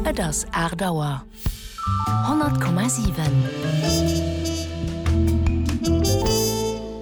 Et ass aacht Auer. 100,7.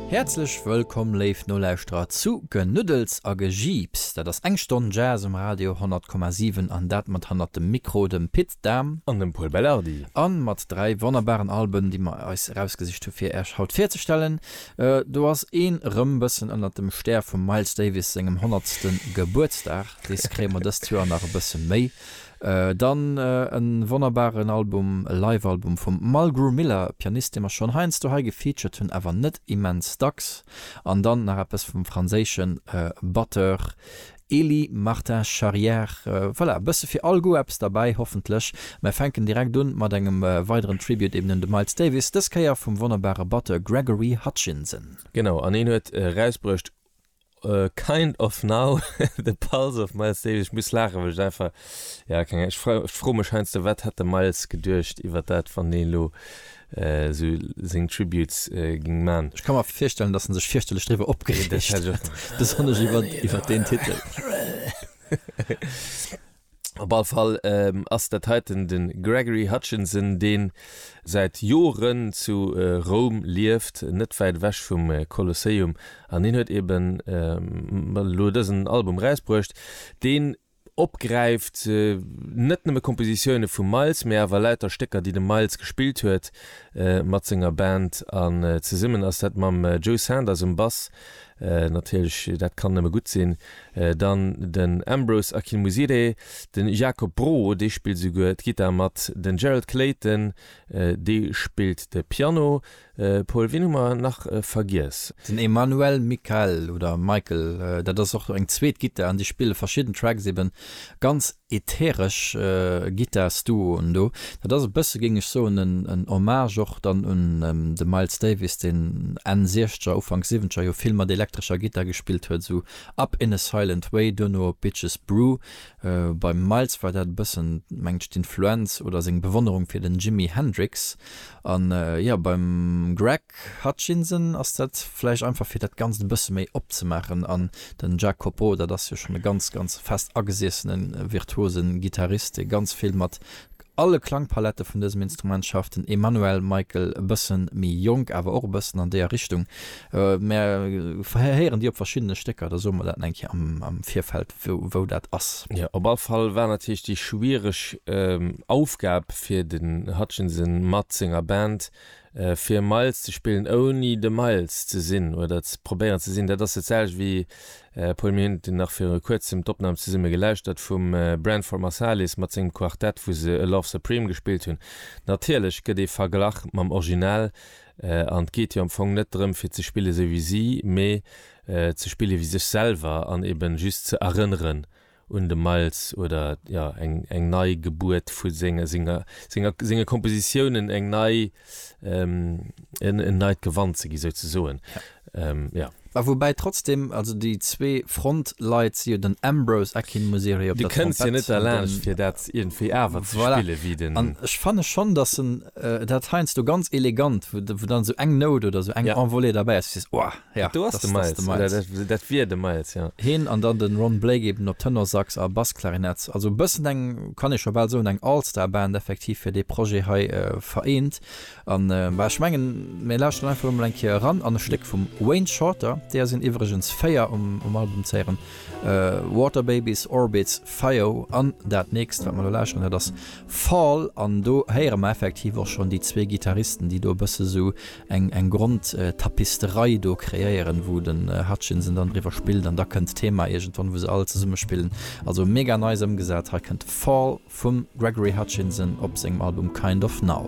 Häerzlech wëllkomm, léif Nolauschterer, zu Genuddels a Gejiips. Dat ass eng Stonn Jazz um Radio 100,7, an dat mat hannert dem Mikro dem Pit. Dahm an dem Pol Belardi. A mat dräi wonnerbaren Alben, déi mer eis erausgesicht hu fir Äech haut virzestellen. Do ass een rëm bëssen ënnert dem Stär vum Miles Davis sengem honnertste Gebuertsdag, dees kréie mer dëst Joer nach e bësse méi. Dann e wonnerbaren Album, e Live-Album vum Mulgrew Miller, e Pianist dee mer schonn heiansdo hei gefeatured hunn, awer net immens dacks. An dann nach eppes vum franséische Batteur Elie Martin Charrière, Voilà, e bësse fir all Goût eppes derbäi, hoffentlech. Mär fänken direkt un mat engem weideren Tribute eben un de Miles Davis, dës Kéier vum wonnerbare Batteur Gregory Hutchinson. Genau, an hien huet erausbruecht Kind of Now, The Pulse of Miles Davis. Ech muss laachen, well ech einfach, ja, keng Ahnung, ech froe mech heiansdo, wat hätt de Miles geduecht iwwer dat, wann deen elo esou seng Tributes ging man. Ech ka mer virstellen dass en sech fierchterlech driwwer opgereegt huet, besonnesch iwwert deen Titel. Op all Fall ass dat heiten de Gregory Hutchinson deen säit Joren zu Roum lieft, net wäit ewech vum Kolosseum, an hien huet eben elo dësen Album erausbruecht deen, opgräift, net nëmme Kompositioune vum Miles, mee awer lauter Stécker, déi de Miles gespillt huet mat senger Band. An zesummen ass dat mam Joe Sanders um Bass, natierlech, dat kann nëmme gutt sinn, dann den Ambrose Akinmusire, de Jacob Broho, dee spillt esouguer d'Gittar mat, den Gerald Clayton, dee spillt de Piano, Pol, wien hu mer nach vergiess? Den Emmanuel Michael, oder Michael, dat ass och eng zweet Gittar an déi spille verschidden Tracks, ebe ganz ätheresch Gittarsduoen do. Dat ass e bësse, géing ech soen, en Hommage och dann un de Miles Davis, deen Enn Siechzeger, Ufank Siwwenzeger jo vill mat elektrescher Gittar gespillt huet, esou Up in a Silent Way, duerno op Bitches Brew. Beim Miles war dat e bëssen, mengt ech, d'Influenz oder seng Bewonnerung fir den Jimi Hendrix. An jo, beim Greg Hutchinson ass dat vläicht einfach fir dat Ganzt e bësse méi opzemaachen. An den Jack Copo, dat ass jo schonn e ganz, ganz fest agesiessene virtuose Gittarist, dee ganz vill mat alle Klangpalette vun dësem Instrument schafft. Den Emmanuel Michael e bësse méi jonk, awer och e bëssen an deeër Richtung. Mer héieren déi op verschiddene Stécker, da soe mer dat eng Kéier am Virfeld. wou dat ass. Jo, op all Fall war natierlech déi schwiereg Aufgab fir den Hutchinson mat senger Band, fir Miles ze spillen ouni de Miles ze sinn oder ze probéieren ze sinn. Dat ass dat selwecht wéi, Paul, mir hunn nach viru kuerzem d'Opnam zesumme gelauschtert vum Branford Marsalis mat sengem Quartett, wou se A Love Supreme gespillt hunn. Natierlech gëtt ee verglach mam Original an et geet jo am Fong net drëm fir ze spillen esou wéi si, mee ze spillen ewéi sech selwer an eben just ze erënneren un de Miles oder jo eng nei Gebuert vu senger senger senger senge Kompositiounen eng nei en en neit Gewand ze gi souzesoen jo. A woubäi trotzdem, also déi zwee Frontleit si jo den Ambrose Akinmusire op der Trompett. Du kënns jo net derlaanscht fir dat iergendwéi awer ze spillen ewéi den. Voilà, an ech fanne schonn, datt en dat heiansdo ganz elegant, wou dann esou eng Nout oder esou eng Envolée derbäi ass, wou du sees, oh. Ja, do ass de Miles. Dat wier de Miles, jo. Hien an dann de Ron Blake eben op Tenorsax a Bassklarinett. Also e bëssen eng, kann ee scho bal soen, eng All-Star-Band effektiv fir dee Projet hei vereent. An, bah, ech mengen, mir lauschteren einfach elo mol eng Kéier eran an e Stéck vum Wayne Shorter, deeër sinn iwwregens véier um Album ze héieren, Water Babies, Orbits, Fio an dat nächst, wat mer elo lauschteren, dat ass Fall. An do héiere mer effektiv och schonn déi zwee Gittaristen, déi do e bësse sou eng Grondtapisterei do kreéieren wou den Hutchinson dann driwwer spillt an da kënnt d'Thema iergendwann wou se all zesumme spillen. Also mega nice ëmgesat. Hei kënnt Fall vum Gregory Hutchinson op sengem Album Kind of Now.